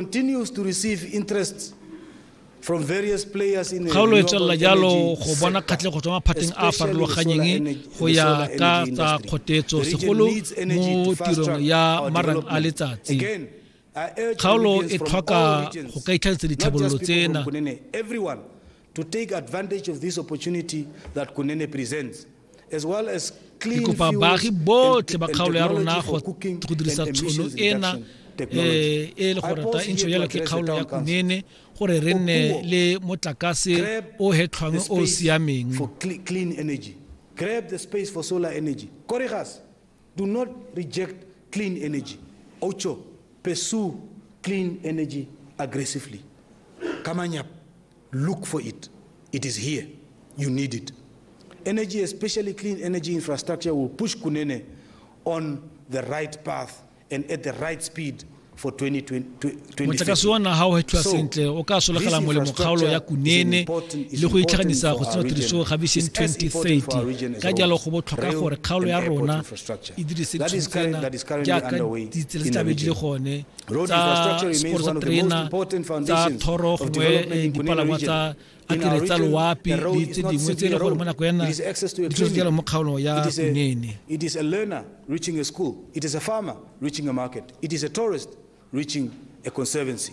continues to receive interest from various players in the kgaolo e tswelela jalo go bona kgatlhego tswa maphateng a a farologanyeng go ya ka tsa kgotetso segolo mo tirong ya marang a letsatsi kgaolo e tlhoka go ka itlhagisa ditlhabololo tsena to take advantage of this opportunity that Kunene presents as well as ke kopa baagi botlhe ba kgaolo ya rona go dirisa tshono ena eh, e le gore ta intšho jalo ke kgaolo ya kunene gore re nne le motlakase o hetlhwang o o siameng Grab the space for solar energy. Korigas, do not reject clean energy. Ocho, pursue clean energy aggressively. Kamanyap. Look for it. It is here. You need it. Energy, especially clean energy infrastructure, will push Kunene on the right path and at the right speed for 2020. motlakase wa naga o hethwa sentle o ka sologela molemo kgaolo ya kunene le go itlhaganisa go tsena tiriso ga vision 2030 ka jalo go botlhokwa gore kgaolo ya rona e dirise tshwantsena jaaka ditsela tse tlabe di le gone tsa sekoro sa terena tsa thoro gongwe eh, dipalangwa tsa akere tsa loapi le tse dingwe tse e le gore mo nako yana ditshosetsela mo kgaolong ya kunene It is a learner reaching a school. It is a farmer reaching a market. It is a tourist reaching a conservancy.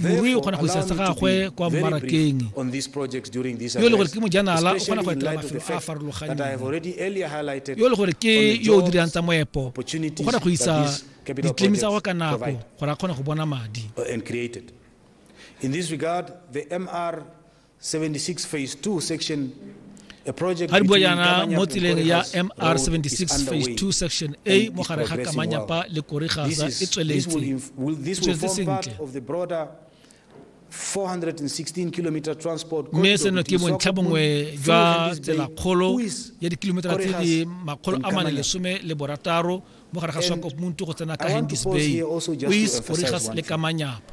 morui o kgona go isa sa gagwe kwa mmarakeng yo e le gore ke mojanala o kgona go etela mafelo a a farologaneng yo e le gore ke yo o dirang tsa moepo o kgona go isa ditlemi tsa gwa ka nako gore a kgone go bona madi 76 phase 2 section a project ga bua yana mo tseleng ya mr 76 phase 2 section a mo gare ga kamanyapa le korigasa e tsweletse sentle mme seno ke bontlha bongwe jwa tselakgolo ya dikilometera tse di makgolo a mane lesome le borataro mo gare ga swakopmuntu go tsena ka handis bay ois korigas le kamanyapa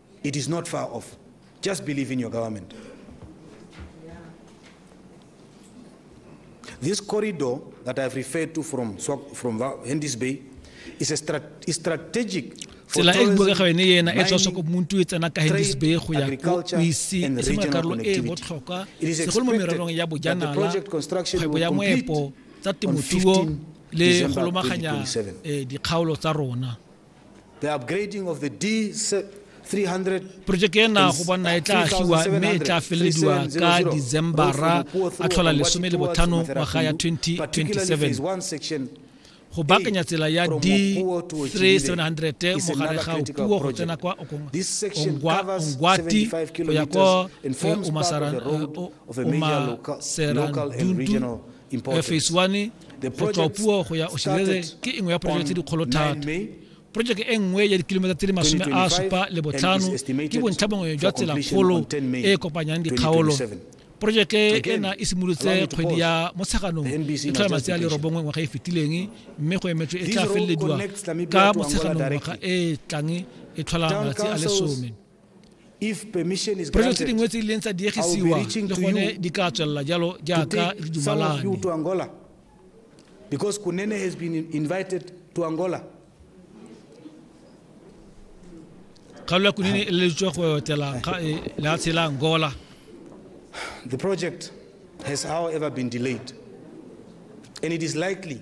It is not far off. Just believe in your government. This corridor that I've referred to from, from Hendy's Bay is a strat is strategic tsela e buega yone ena e tswa soko muntu e tsena ka hendes bay go ya ko ise e se makarolo e botlhokwa segolo mo mererong ya bojanala kgwebo ya moepo tsa temothuo le go lomaganya eh, dikgaolo tsa rona porojeke ena go bonna e tla agiwa mme e tla felelediwa ka decembera a tlhola lesome le botlhano ngwaga ya 2027 go baakanya tsela ya d3700 mogare ga puo go tsena kwa ongwati go ya kwa omaserantuntu phase one go tswa puo go ya oshilele ke engwe ya project tse dikgolo thata projeke e nngwe ya dikilometa tse di masome a supa le botlhano ke bontlha bongwe jwa tselakgolo e e kopanyang dikgaolo projeke ena e simolotse kgwedi ya motsheganong e tlhola matsi a lerobongwe ngwaga e fetileng mme go emetswe e tla felelediwa ka motsheganong ngwaga e tlang e tlhola malatsi a lesome Diphoso tse dingwe tse di leng tsa diegisiwa le gone di ka tswelela jalo jaaka re dumalane. Because Kunene has been invited to Angola. Kgaolo ya Kunene e leleditswe go etela e, lefatshe la Angola. The project has however been delayed and it is likely